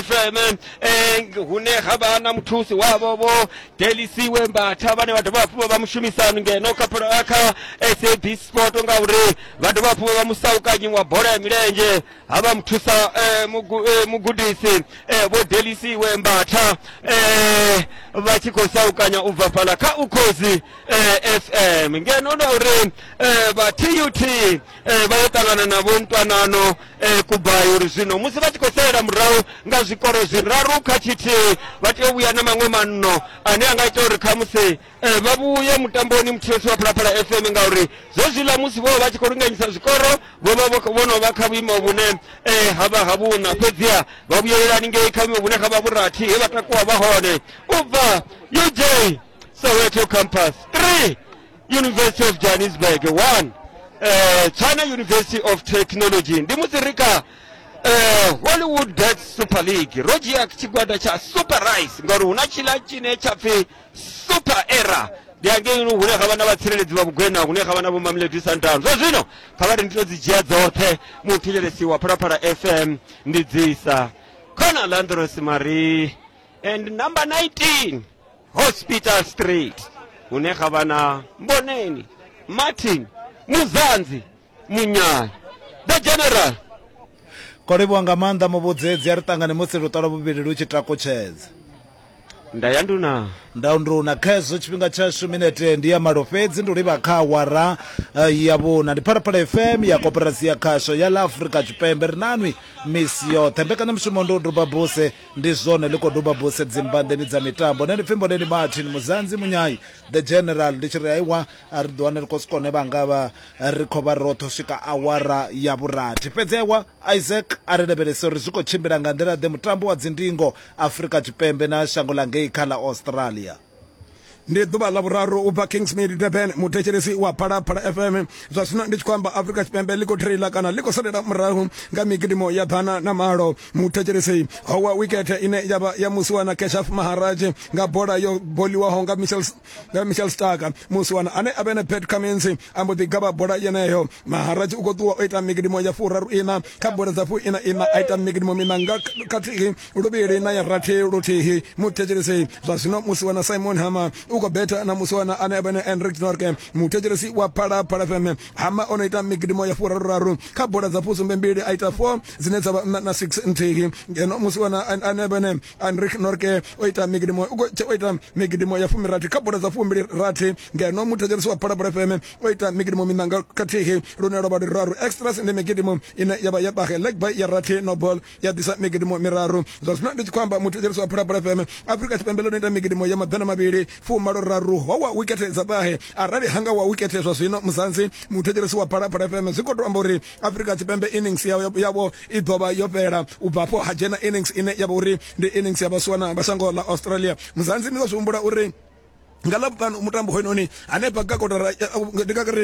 fm eh, hune ha vha na muthusi wavho vho delisiwe mbatha vhane vha dovha hafhu vha vha mushumisani ngeno kha pro- eh, kha sabc sport ngauri vha dovha hafhu vha vha musaukanyi wa bola ya milenzhe ha vha muthusa eh, mugu- eh, mugudisi eh, vho delisiwe mbatha eh, vha tshi khou saukanya u bva fhala kha ukhozi eh, fm ngeno na uri eh, vha tut eh, vha yo ṱangana na vho ntwanano eh, kubai uri zwino musi vha tshi khou salela murahu nga zwikoro zwiraru kha tshithihi vha tea u vhuya na maṅwe manno ane a nga ita uri khamusi eh, vha vhuye mutamboni muthivhesi wa phalaphala fm ngauri zwezwiḽa musi vho vha vha tshi khou linganyisa zwikoro vho vha vho- vho no vha kha vhuimo vhune eh, ha vha ha vhuṋa fhedziha vha vhuyelelani ngei kha vhuimo vhune ha vha vhurathi he vha takuwa vha hone u bva uj soweto campus 3 university of johannesburg one eh, china university of technology ndi muzirika eh, hollywood bet super league ro dzhia tshigwada tsha super rice ngauri hu na tshila tshine tsha pfi super era ndi angei hune ha vha na vhatsireledzi vha vhugwena hune ha vha na vhomamledi santano zwa zwino kha vha ri ndi to dzi dzhia dzoṱhe muthetshelesi wa phalaphala fm ndi dzisa khona landros marie and number 19 hospital street hune ha vha na mboneni martin muzanzi munyanya the general ko livhuwa nga maanḓa muvhudzedzi a ri ṱangane musi luṱolo vhuvhili lu tshi takutshedza nda ya nduna nda nduna kha hezwo tshifhinga tshashu minete ndi ya malo fhedzi ndi livha kha awara eh, ya vhuna ndi phalaphala fm ya koperasi ya khasho ya la afrika tshipembe ri nanwi misi yoṱhe mbekanyamushumo ndi u duba buse Ndi zwone ḽi khou duba buse dzimbanḓeni dza mitambo. Nṋe ndi pfi Mboneni Martin Muzanzi Munyai, the general. Ndi tshi ri aiwa a ri ḓi wane ri khou si kone vha nga vha ri khou vha roṱhe u swika awara ya vhurathi. Fhedzi aiwa Isaac a ri lavhelese uri zwi khou tshimbila nga nḓila ḓe mutambo wa dzindingo Afrika Tshipembe na shango ḽa ngei kha ḽa Australia. ndi ḓuvha ḽa vhuraru u bva kingsmead durban muthetshelesi wa phalaphala fm zwa zwino ndi tshi khou amba afrika tshipembe ḽi khou traila kana ḽi khou salela murahu nga migidimo ya ḓana na malo muthetshelesi howa wikete ine ya vha ya musiwana keshaf maharaj nga bola yo boliwaho nga michel nga michel stark musiwana ane a vhe na pat cummins a mbo ḓi gavha bola yeneyo maharaj u khou ṱuwa o ita migidimo ya furaru ina kha bola dza fu ina ina a ita migidimo mina nga khathihi luvhili na ya rathi luthihi muthetshelesi zwa zwino musi wana simon hama u khou betha na musi wana ane avhene enrik norke muthetshelesi wa phalaphala fm hama o no ita migidimo ya furaruraru kha bola dza fusumbe mbili a ita four dzine dza vha nṋa na six nthihi ngeno musi wana ane avhene enrik norke o ita migidimo o ita migidimo ya fumirathi kha bola dza fumbili rathi ngeno muthetshelesi wa phalaphala fm o ita migidimo minanga khathihi lune lwa vha luraru extras ndi migidimo ine ya vha ya bahe legby ya rathi nobol ya ḓisa migidimo miraru zwa zwino ndi tshi khou amba muthetsheliso wa phulaphula fm afrika tshipembe ḽo no ita migidimo ya maḓana mavhili fumalo raru ho wa wikethe dza ṱahe arali hanga wa wikethe zwa zwino muzanzi muthetsheliso wa phulaphula fm zwi khou tou amba uri afrika tshipembe innings yavho i ḓo vha yo fhela u bva afho ha dzhena innings ine ya vha uri ndi innings ya vhasiwana vha shango ḽa australia muzanzi ni ḓo zwi humbula uri nga ḽavhuṱanu mutambo hoyunoni hanefha ka kotara ndi nga ri